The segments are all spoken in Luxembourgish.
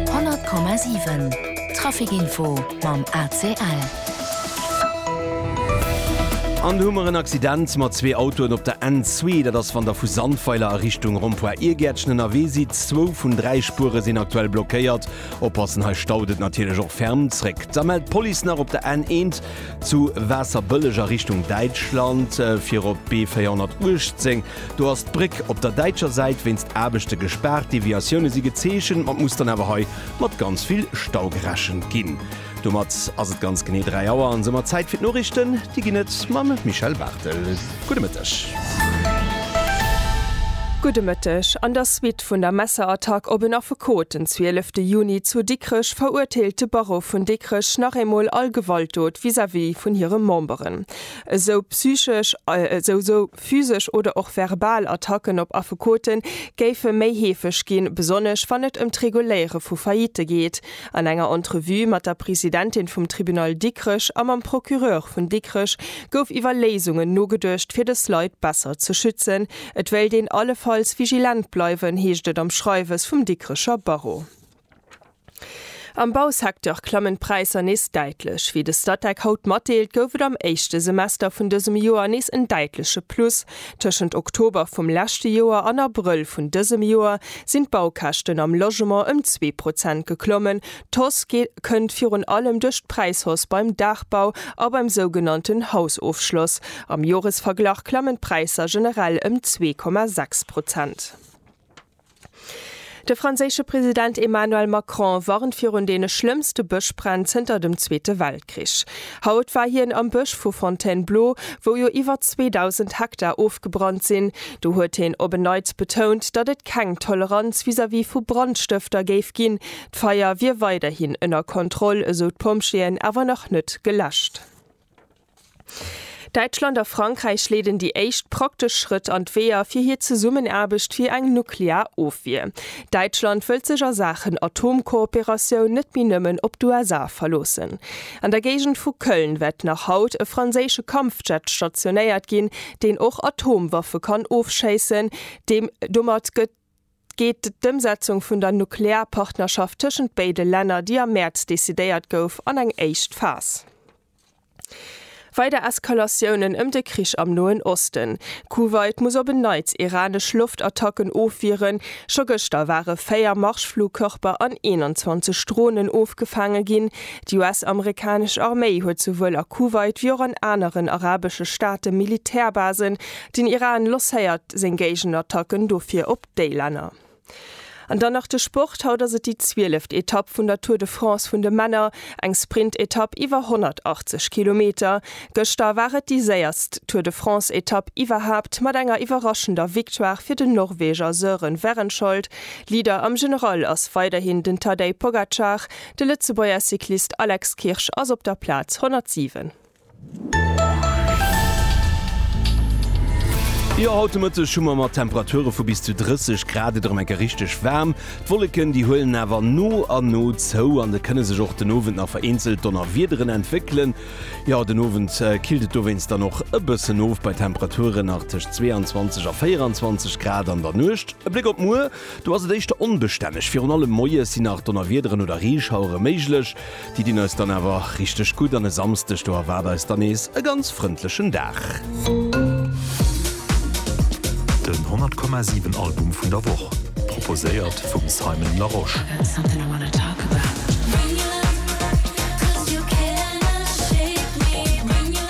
100,7 Traficinfo mam ACL. An do hu mer en Accident mat zwee Autoen op der N zwee. Dat ass, wann der vu Sandweiler a Richtung Rond-point Irgäertchen ënnerwee sidd. Zwou vun dräi Spuere sinn aktuell blockéiert. Oppassen, hei staut et natierlech och ferm. Zréck da mellt d'Police nach op der N eent zu Waasserbëlleg a Richtung Däitschland, fir op d'B 418. Do ass d'Bréck op der däitscher Säit wéinst Aarbechte gespaart. Deviatioune si gezeechent, ma et muss dann awer hei mat ganz vill Stau gerechent ginn. Domat ass et ganz genee 3 Auer an soumat Zäit fir d'Noriichten. Déi ginn et mam Michèle Barthel. Gudde Mëtteg. Gudde Mëtteg. An der Suite vun der Messerattack op en Affekot den 12 de Juni zu Dikrech verurteelt de Barreau vun Dikrech nach eemol all Gewaltdot vis-à-vis vun hire Memberen. Esou psychesch, esou. Physesch oder och verbal Attacken op Affekote géife méi heefeg ginn, besonnesch wann et ëm d'Reguléiere vu Faillitte geet. An enger Entrevue mat der Presidentin vum Tribunal Dikrech a mam Procureur vun Dikrech gouf iwwer Léisungen nogeduecht, fir dës Leit besser ze schützen. Et wéilt een allefalls vigilent bleiwen, heescht et am Schreiwes vum Dikrecher Barreau. Am Bausecteur klammen d'Präisser nees däitlech. Wéi de Statec haut matdeelt, gouf et am éischte Semester vun dësem Joer nees en däitleche Plus. Tëschent Oktober vum leschte Joer an Abrëll vun dësem Joer sinn d'Baukäschten am Logement ëm zwee Prozent geklommen. D'Hausse kënnt virun allem duerch d'Präishausse beim Daachbau a beim sougenannten Hausofschloss. Am Joresverglach klammen d'Präisser generell ëm zwee Komma sechs Prozent. De franséische President Emmanuel Macron warnt virun deene schlëmmste Bëschbränn zënter dem Zweete Weltkrich. Haut war hien am Bësch vu Fontainebleau, wou jo iwwer 2.000 Hektar ofgebrannt sinn. Do huet hien op en Neits betount, datt et keng Toleranz vis-à-vis vu Brandstëfter géif ginn. D'Feier wier weiderhin ënner Kontroll, esou d'Pompjeeën, awer nach net geläscht. Däitschland a Frankräich leeden déi éischt praktesch Schrëtt an d'Weeër fir hir Zesummenaarbecht fir eng nuklear Ofwier. Däitschland wëllt sech a Saachen Atomkooperatioun net méi nëmmen op d'USA verloossen. An der Géigend vu Köln wäert nach haut e franséische Kampfjet stationéiert ginn, deen och Atomwaffe kann ofschéissen. Domat gëtt. geet d'Ëmsetzung vun der Nuklearpartnerschaft tëschent béide Länner, déi am Mäerz decidéiert gouf, an eng éischt Phas. Weider Eskalatiounen ëm de Krich am Noen Osten, Kuwait muss op en Neits iranesch Loftattacken ofwieren, scho gëschter ware 4 Marschflugkörper an 21 Dronen ofgefaange ginn, déi US-amerikanesch Arméi huet souwuel a Kuwait wéi och an aneren arabesche Staate Militärbasen Den Iran losséiert seng Géigenattacken dofir op déi Länner. An dann nach de Sport, Haut ass et déi zwieleft Etapp vun der Tour de France vun de Männer, eng Sprintetapp iwwer 180 Kilometer. Gëschter war et déi séierst Tour de France-Etapp iwwerhaapt mat enger iwwerraschender Victoire fir den Norweger Søren Wærenskjold. Leader am General ass weiderhin den Tadej Pogacar, de Lëtzebuerger Cyclist Alex Kirsch ass op der Plaz 107. Jo, haut de Mëtteg hu mer mat Temperature vu bis zu 30 Grad et erëm eng Kéier richteg waarm. D'Wolleken, déi huelen awer no a no zou an et kënne sech och den Owend nach vereenzelt Donnerwiederen entwéckelen. Jo, den Owend killt et dowéinst dann och e bëssen of bei Temperaturen nach tëscht 22 a 24 Grad an der Nuecht. E Bléck op muer. Do ass et éischter onbestänneg. Virun allem moies sinn nach Donnerwiederen oder Reeschauere méiglech. Déi dinn eis dann awer richteg gutt an e Samsdeg, do erwaart eis dann nees e ganz frëndlechen Dag. Den 100 Komma 7 Album vun der Woch, proposéiert vum Simon Larosche.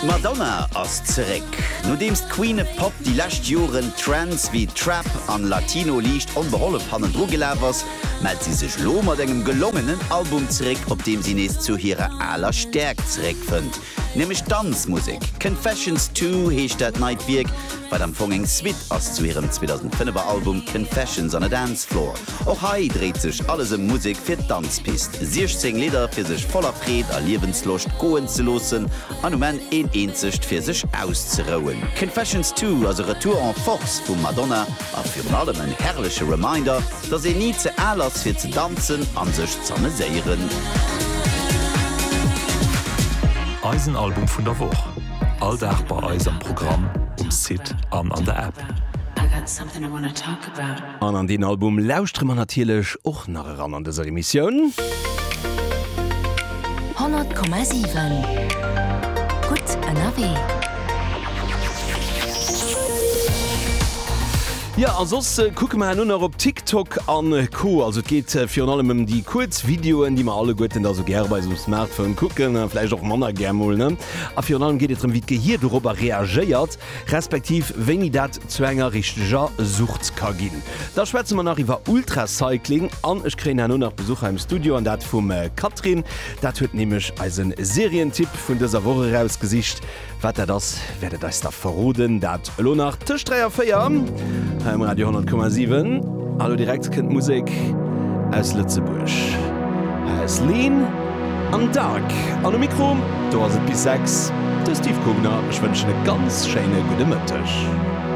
D'Madonna ass zeréck! Nodeems d'Queen of Pop déi lescht Joren Trends wéi Trap an Latino liicht onbehollef hannendru gelaf ass, mellt si sech lo mat engem gelongenen Album zeréck, op deem si nees zu hirer aler Stäerkt zeréckfënnt, nämlech d'Danzmusek. Confessions Two heescht dat neit Wierk, wat am Fong eng Suite ass zu hirem 2005er Album Confessions on a Dance Floor. Och hei dréit sech alles ëm Musek fir d'Danzpist, 16 Lidder fir sech voller Freed a Liewensloscht goen ze loossen, an um Enn een eenzegt fir sech auszerouen. Confessions Two ass e Retour en Force vum Madonna a virun allem en herrleche Reminder, dass een ni ze al ass fir ze danzen an sech z'ameséieren. Eisen Album vun der Woch, all Dag bei eis am Programm, um Site an an der App. An an deen Album lauschtere mer natierlech och nach eran an dëser Emissioun. 100,7 gutt ënnerwee. Jo a soss kucke mer herno nach op TikTok a Co. Also et geet virun allem ëm déi kuerz Videoen, déi mer alleguerten da sou gäre bei eisem Smartphone kucken, vläicht och manner gär mol, ne? A virun allem geet et drëm, wéi d'Gehier dorobber reagéiert. respektiv wéini dat zu enger richteger Sucht ka ginn. Da schwätze mer nach iwwer Ultracycling an ech kréien herno nach Besuch hei am Studio an dat vum Catherine. Dat huet nämlech eise Serientipp vun dëser Woch erausgesicht. Wat dat ass, wäert et eis da verroden. Dat elo nach tëscht 3 a 4 hei um Radio 100,7. A lo direkt kënnt Musek aus Lëtzebuerg. Hei ass Leen. Am Dark an um Mikro, do ass et bis 6, de Steve Kugner. Ech wënschen e ganz schéine gudde Mëtteg.